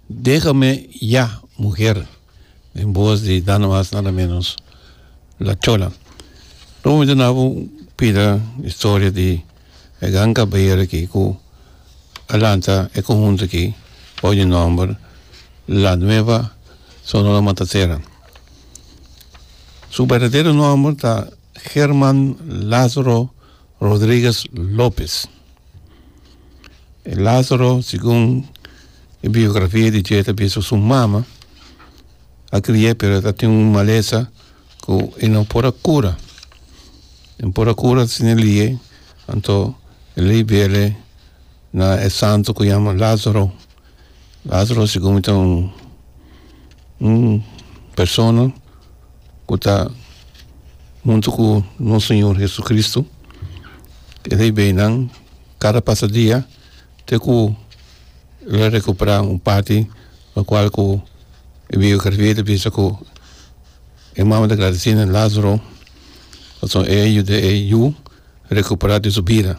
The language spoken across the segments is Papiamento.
Déjame ya mujer den voz di nada mas nada menos La Chola. Lo momento na bo pida historia di e gran caballero aki cu a lanta e conjunto aki bajo e nomber La Nueva Sonora Matancera. Su berdadero nomber ta German Lazaro Rodriguez Lopez. E lazaro segun e biografia di dje ta bisa su mama a krie pero e ta tin un malesa ku e no por a kura e no por a kura si no lie anto e lei bele na e santo ku yama lazaro. Lazaro segun mi ta un un persona ku ta huntu ku nos Señor Hesucristo esei beinan kada pasa dia te ku el a rekupera un parti lokual ku e biografia ta bisa ku e mama ta gradisí na Lazaro pasobra e a yuda ei yu rekupera di su bida.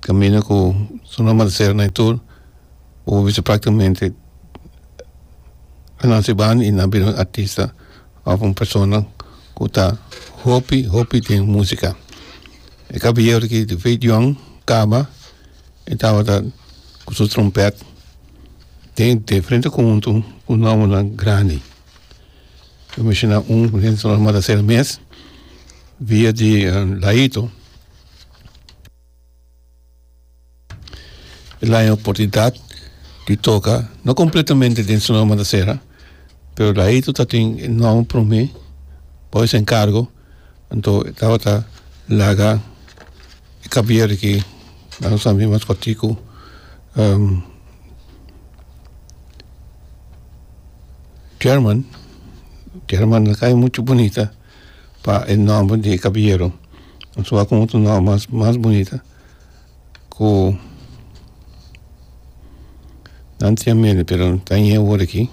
camino cu su nomber ta cera na e tur u bisa practicamente a naci banda y a bira un artista of un persona cu ta hopi hopi den musica e caballero aqui di veit young caba e tabata cu su trompet den diferente conjunto cu nomber nan grandi mencionar un ta cera mes via di layito El a haña oportunidat di toka, no kompletamente den su nueva mantasera, pero laito ta tin e nuawo promé, Boys en kargo, anto e tabata laga e kabier aki, na nos tambe mas kortiku, German, German a kai muchu bunita. pa e nomber di e kabieru nos wak con otro nomber mas mas bunita cu nan tin mente pero no ta ñe awor aki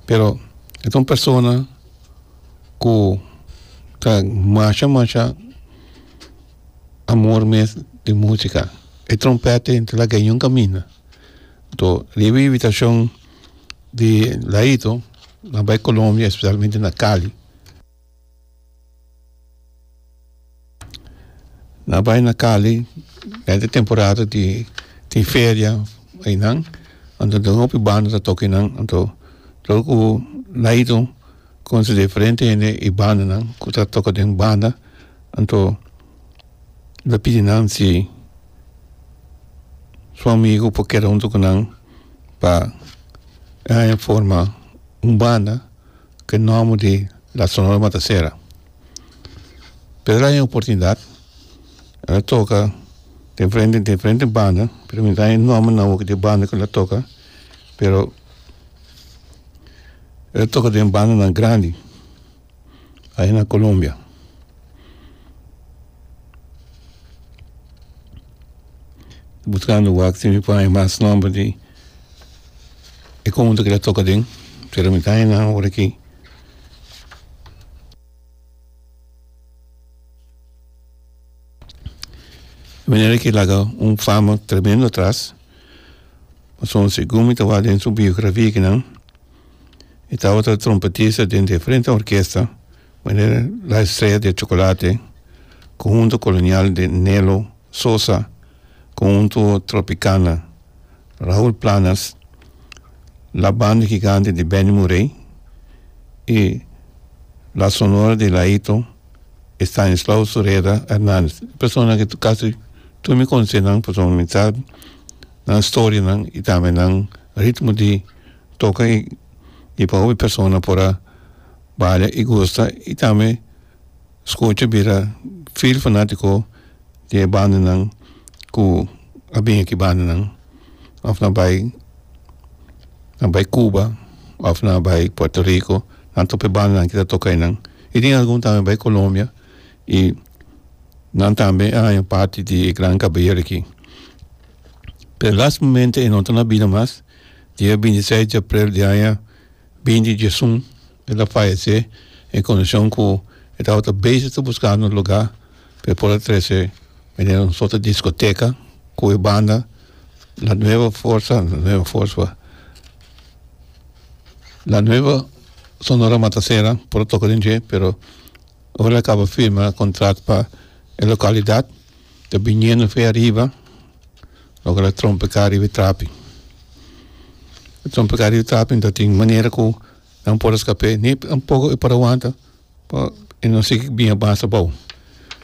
pero e ta un persona cu ta masha masha amor mes di musica e trompet ti ta laga e yun caminda to riba e habitacion di laito nan bai Colombia especialmente na Cali nan bai na Cali kende temporada di di feria einan anto den hopi banda ta toca einan anto lo cu laito con su diferente hende y bandanan cu ta toca den banda anto. lo pidi nan si su amigo por keda hunto cu nan pa e haña forma un banda cu e nomber di La Sonora Matasera. Pero el a haña oportunidad, el a toca den frente, den frente banda, pero mi ta haña e nomber na boca di e banda cu el a toca, pero el a toca den bandanan grandi. Ahi na Colombia buscando wak tin por haña mas nomber di e conjunto que ta toca den pero mi ta haña nan awor aki manera que laga un fama tremendo atras pasobra segun mi ta wak den su biografia aki nan e tabata trompetista den e frente orkesta manera La Estrella de Chocolate, Conjunto Colonial de Nelo Sosa, Conjunto Tropicana, Raul Planas, La Banda Gigante de Benny Moré y La Sonora de Laito, Estanislao Sureda Hernandez. Personanan cu casi tur mi conocenan pasobra mi sa nan storianan y tambe nan ritmo di toca y di pa hopi persona por a balia y gusta y tambe scucha bira fiel fanatico di e bandanan cu a bini aki bandanan of nan bay nan bay cuba of nan bay puerto rico nan topa e bandanan aki ta toca enan y tin algun tambe bay colombia y nan tambe a haña parti di e gran caballero aki pero lastimamende e no ta na bida mas. Dia binti seis di aprel di aña binti djesun el a fayesé en kondishon ku e tabata bese ta buskando un lugá pa e por a trese bendendo un sòt di diskoteka ku e banda La Nueva Forsa La Nueva Forswa La Nueva Sonora Matasera por a toka den dje pero ora el a kaba firma kontratu pa e lokalidat. Ta biniendo fe ariba lo ke la trompe ka riba e trapi lo trompe ka riba e trapi enta tin manera ku nan por eskap'é ni tampoco e por a wanta por e no si kin bini a basa abou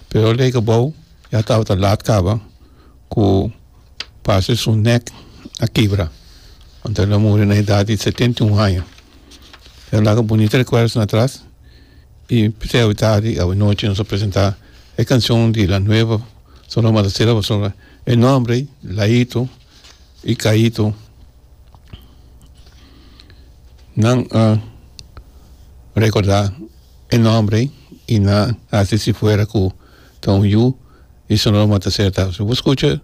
pero a lei kobou ya tabata laat kaba ku parse su nèk a kibra wan ta lo a muri na edad di setenta i un aña e laka bunita rekuerdonan atras. I p'esei awe tardi, awe nochi nos a presenta e cancion di la nueva Sonora Matancera pa Sonora. E nombre ei Laito y Caito. Nan a recorda e nombre ei y nan a haci si fuera cu ta un yu di Sonora Matancera ta. Si bo scucha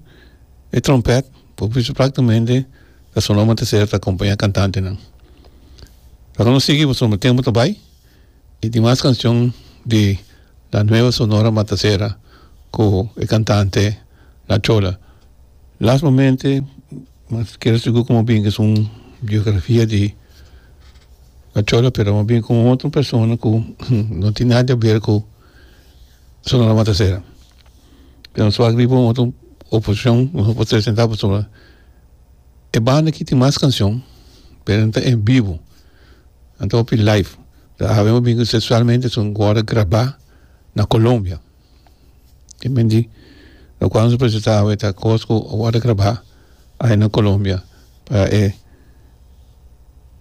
e trompet bo bisa practicamente ta Sonora Matancera ta acompaña cantantenan. Laga nos sigui pasobra tempo ta bay. E tin mas cancion di La Nueva Sonora Matacera cu e cantante La Chola. Last momente no keda sigur como a bini esun biografia di La Chola pero amo bini con otro persona cu no tin nada que ver cu Sonora Matacera. Pero so aki riba un otro oposicion no por presenta pasobra e banda aki tin mas cancion pero no ta en bivo. nan ta hopi live ta awe un bingo sexualmente so go worde graba na Colombia tin men di locual nos a presenta awe ta cos cu a worde graba awe na Colombia pa e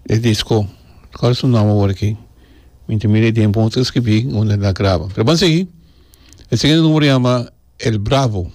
e disco locual su nomber awor aki mi ta mira e tiempo un ta scribi unda e ta graba pero ban sigi e sigue numero yama el bravo.